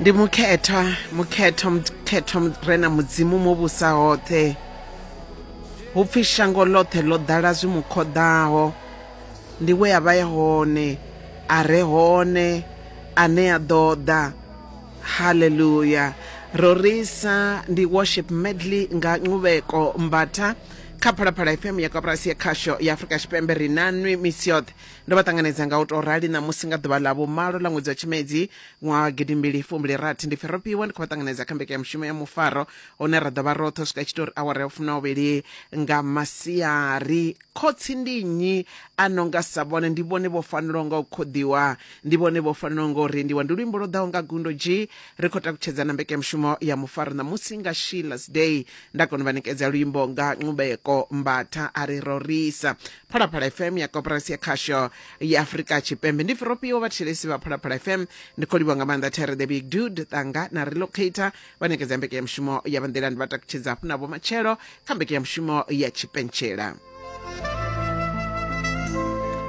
ndi mukhethwa mukhethwa mukhethwa re na mudzimu mo vhusa hoṱhe hu pfi shango ḽoṱhe ḽo ḓala zwi mu khoḓaho ndi we a vha ye hone a re hone ane a ḓo ḓa haleluya rorisa ndi worship medley nga nquveko mbatha kha phalaphala fm ya koporasi ya khasho ya afurika tshipembe ri na nwi misi yoṱhe Ndo vha ṱanganedza nga u tou rali ṋamusi nga ḓuvha ḽa vhumalo ḽa ṅwedzi wa Tshimedzi ṅwaha wa gidimbili fumbili rathi ndi pfi ro fhiwa ndi khou vha ṱanganedza kha mbekanyamushumo ya mufaro hune ra ḓo vha roṱhe u swika tshi tori awara ya u fumna uvhili nga masiari. Khotsi ndi nnyi a no nga sa vhone? Ndi vhone vho fanelaho nga u khoḓiwa, ndi vhone vho fanelaho nga u rendiwa. Ndi luimbo lwo ḓaho nga gundo dzhii ri khou takutshedza na mbekanyamushumo ya mufaro ṋamusi nga Sheila's Day. Nda kona u vha ṋekedza luimbo nga Nqubeko Mbatha a ri rorisa. phalaphala fm ya koporasi ya khasho ya afurika tshipembe ndi firopiwo vhathelesi vha phalaphala fm ndi khou livhwa nga maanḓa tere the big dude ṱanga na relocator vha nekedza mbekanyamushumo ya vhanḓilani vha takutshedza hafhu na vhomatshelo kha mbekanyamushumo ya tshipentshela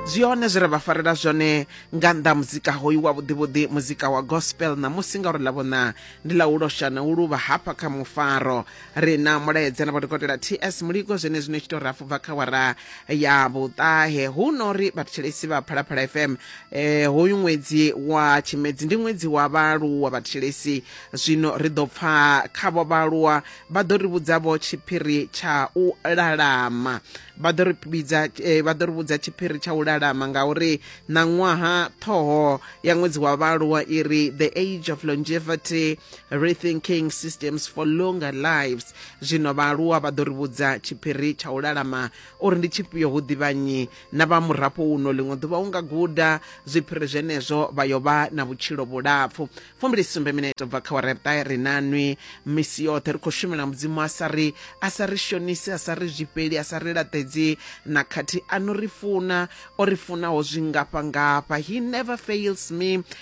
zwi hone zwi re vha farela zwone nga nnḓa muzika hoyu wa vhuḓivhuḓi muzika wa gospel ṋamusi ngauri ḽa vhona ndi ḽa u losha na u luvha hafha kha mufaro ri na mulaedza na vhadokotela ts muliko zwenezwi no tshi tou rafu bva kha wara ya vhuṱahe hu no ri vhathetshelesi vha phalaphala fm eh, hoyu ṅwedzi wa tshimedzi ndi ṅwedzi wa vhaaluwa vhathetshelesi zwino ri ḓo pfa khavho vhaaluwa vha ḓo ri vhudzavho tshiphiri tsha u lalama vha ḓo ri vhidza eh, vha ḓo ri vhudza tshiphiri tsha u lalama ngauri na ṅwaha ṱhoho ya ṅwedzi wa vhaaluwa i ri the age of longevity rethinking systems for longer lives zwino vhaaluwa vha ḓo ri vhudza tshiphiri tsha u lalama uri ndi tshifhio hu ḓivha nnyi na vha murafho uno ḽiṅwe ḓuvha u nga guda zwiphiri zwenezwo vha yo vha na vhutshilo vhulapfu fumbilisumbe mineto bva kha wareta ri na nwi misi yoṱhe ri khou shumela mudzimu a sa ri a sa ri shonisi a sa ri zwifheli a sa ri laṱedzi na khathi a no ri funa o ri funaho zwingafha ngafha he never fails me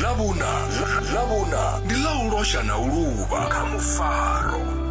ḽa vhuna ḽa vhuna ndi ḽa u losha na u luvha kha mufaro